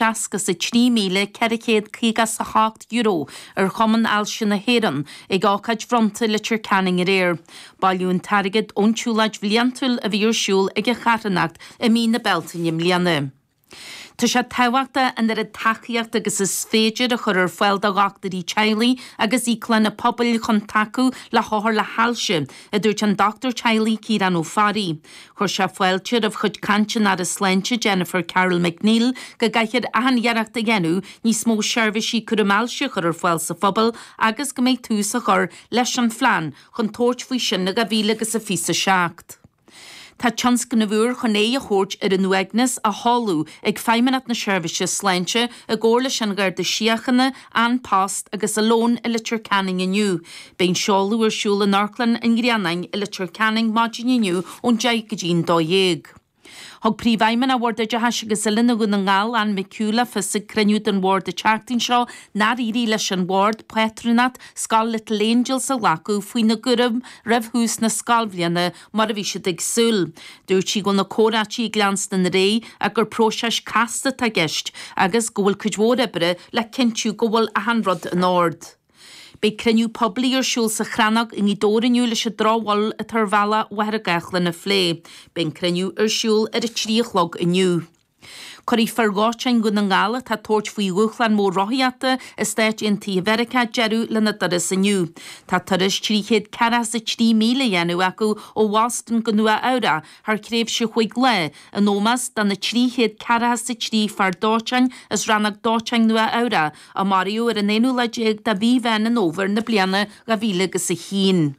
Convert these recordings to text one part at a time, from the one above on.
€63,458 ar Chumann Ailse na hÉireann ag ócáid bhronnta i Leitir Ceanainn aréir. Bailíodh an t-airgead ón tsiúlóid bhliantúil a bhí ar siúl ag an charthanacht i mí na Bealtaine i mbliana. Tá sé tábhachtach an oiread tacaíochta agus is féidir a chur ar fáil do dhochtúirí teaghlaigh agus íoclanna pobail chun tacú le hothair le hailse, a dúirt an Dochtúir Teaghlaigh Ciarán Ó Fearraigh. Chuir sé fáilte roimh chuid cainte an Aire Sláinte Jennifer Carroll MacNeill go gcaithfear achan iarracht a dhéanamh níos mó seirbhísí cúraim ailse a chur ar fáil sa phobal agus go mbeidh tús á chur leis an phlean chun tabhairt faoi sin i 2027. Tá tionscnamh úr chun aghaidh a thabhairt ar an uaigneas á sheoladh ag Feidhmeannacht na Seirbhíse Sláinte i gcomhar leis an Gharda Síochána An Post agus Alone i Leitir Ceanainn inniu. Beidh an seoladh ar siúl in Amharclann an Ghrianáin i Leitir Ceanainn maidin inniu ón 10 go dtí an 12. Thug Príomhfheidhmeannach Bhord Oideachais agus Oiliúna Dhún na nGall, Anne McHugh le fios ag cruinniú den Bhord an tseachtain seo nár éirigh leis an Bhord pátrúnacht Scoil Little Angels a ghlacadh faoina gcúram roimh thús na scoilbhliana mar a bhí siad ag súil. Dúirt sí go bhfuil na comhráití ag leanstan ar aghaidh ach gur próiseas casta atá i gceist agus go bhfuil cuid mhór oibre le cinntiú go bhfuil achan rud in ord. Beidh cruinniú poiblí ar siúl sa Chrannóg i nGaoth Dobhair inniu leis an drochbhail atá ar bhealach Mhachaire Gathlán a phlé. Beidh an cruinniú ar siúl ar a trí a chlog inniu. Cuirfidh fir dhóiteáin Dhún na nGall, atá ag tabhairt faoi dhúshlán mór rothaíochta i Stáit Aontaithe Mheiriceá, deireadh lena dturas inniu. Tá turas 343 míle á dhéanamh acu ó Bhoston go Nua Eabhrach thar thréimhse chúig lá, in ómós do na 343 fear dóiteáin as Rannóg Dóiteáin Nua Eabhrach a maraíodh ar an aonú lá déag de Mhí Mheán an Fhómhair na bliana 2001.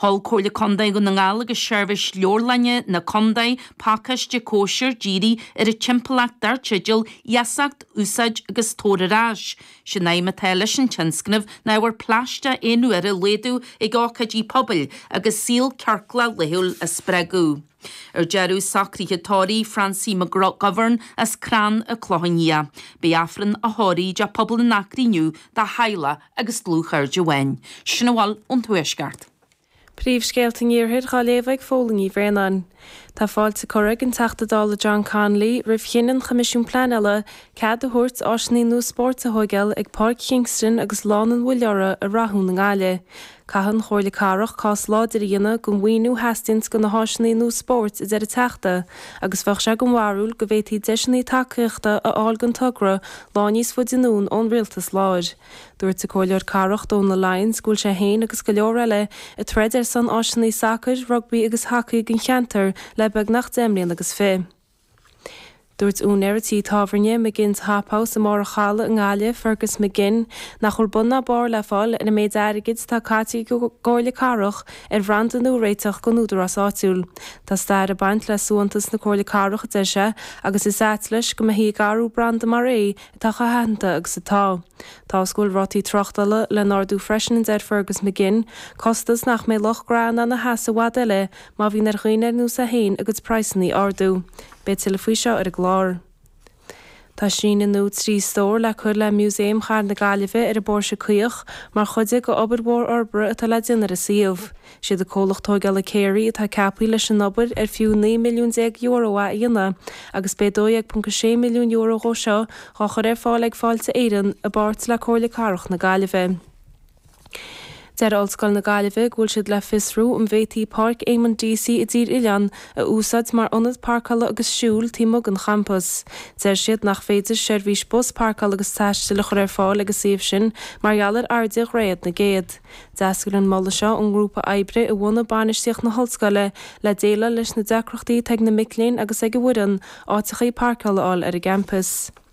Sheol Comhairle Contae Dhún na nGall agus Seirbhís Leabharlainne na Contae pacáiste cóisire dírithe ar an timpeallacht dar teideal 'Iasacht, Úsáid agus Tabhair ar Ais'. Is é an aidhm atá leis an tionscnamh ná ábhar plaisteach aonuaire a laghdú ag ócáidí pobail agus saol ciorclach laethúil a spreagadh. Ar deireadh, socruithe tórraimh, Francie McGovern as Crann, an Clochán Liath. Beidh Aifreann a thórraimh i dTeach Pobail na nAcraí inniu dá theaghlach agus dlúthchairde amháin. Sin a bhfuil ón Tuaisceart. Príomhscéalta an Iarthair dhá léamh ag Fódhla Ní Bhraonáin. Tá fáilte curtha ag an Teachta Dála John Connolly roimh chinneadh an Choimisiúin Pleanála cead a thabhairt áiseanna nua spóirt a thóigeáil ag Páirc Kingston agus Lána an Mhuilleora i Rathún i nGaillimh. Caithfidh an Chomhairle Cathrach cás láidir a dhéanamh don mhaoiniú a theastaíonns do na háiseanna nua spóirt, a deir an Teachta, agus bheadh sé den bharúil go bhféadfaí deiseanna tacaíochta a fháil don togra lá níos faide anonn ón Rialtas láir. Dúirt an Comhairleoir Cathrach Dónal Lyons go bhfuil sé féin agus go leor eile ag troid ar son áiseanna sacair, rugbaí agus hacaí don cheantar le beagnach deich mbliana agus fiche. Dúirt úinéir tí tábhairne, McGinn's Hophouse, i mBarr a' Chalaidh i nGaillimh, Fergus McGinn, nach bhfuil bun ná barr le fáil ar an méid airgid atá caite ag an gComhairle Cathrach ar bhranda nua a réiteach don údarás áitiúil. Tá stair ag baint le suantas na Comhairle Cathrach, a deir sé, agus is ait leis go mbeifí ag athrú branda mar é atá chomh haitheanta agus atá. Toisc go bhfuil rátaí tráchtála le n-ardú freisin, a deir Fergus McGinn, costas nach mbeidh lucht gnó in ann a sheasamh i bhfad eile Má bhíonn ar dhaoine ar nós é féin a gcuid praghsanna a ardú, beidh tuilleadh faoi seo ar an gclár. Tá síneadh nua trí stór le cur le Músaem Chathair na Gaillimhe ar an bPóirse Caoch mar chuid de obair mhór fhorbartha atá le déanamh ar an suíomh. Siad an comhlacht tóigeála Carey atá ceapaithe leis an obair ar fiú €19 milliún é a dhéanamh agus beidh €12.6 milliún dhó seo dhá chur ar fáil ag Fáilte Éireann i bpáirt le Comhairle Cathrach na Gaillimhe. Deir Ollscoil na Gaillimhe go bhfuil siad le fiosrú an bhféadfaí Páirc Éamonn Deacy i dTír Oileáin a úsáid mar ionad páirceála agus siúil taobh amuigh den champas. Deir siad nach féidir seirbhís bus, páirceáil agus taisteal a chur ar fáil ag an suíomh sin mar gheall ar airde Dhroichead na gCéad. D'eascair an moladh seo ón ngrúpa oibre a bhunaigh bainistíocht na hollscoile le déileáil leis na deacrachtaí atá ag na mic léinn agus ag an bhfoireann áiteacha páirceála a fháil ar an gcampas.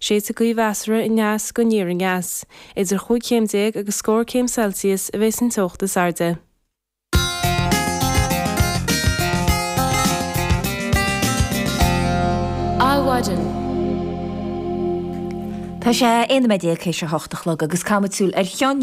Séidfidh gaoth mheasartha aneas go aniar aneas. Idir chúig chéim déag agus scór céim Celsius a bhéas an teocht is airde. Adhmhaidin. Tá sé aon nóiméad déag théis a hocht a chlog agus caithfidh muid súil ar cheann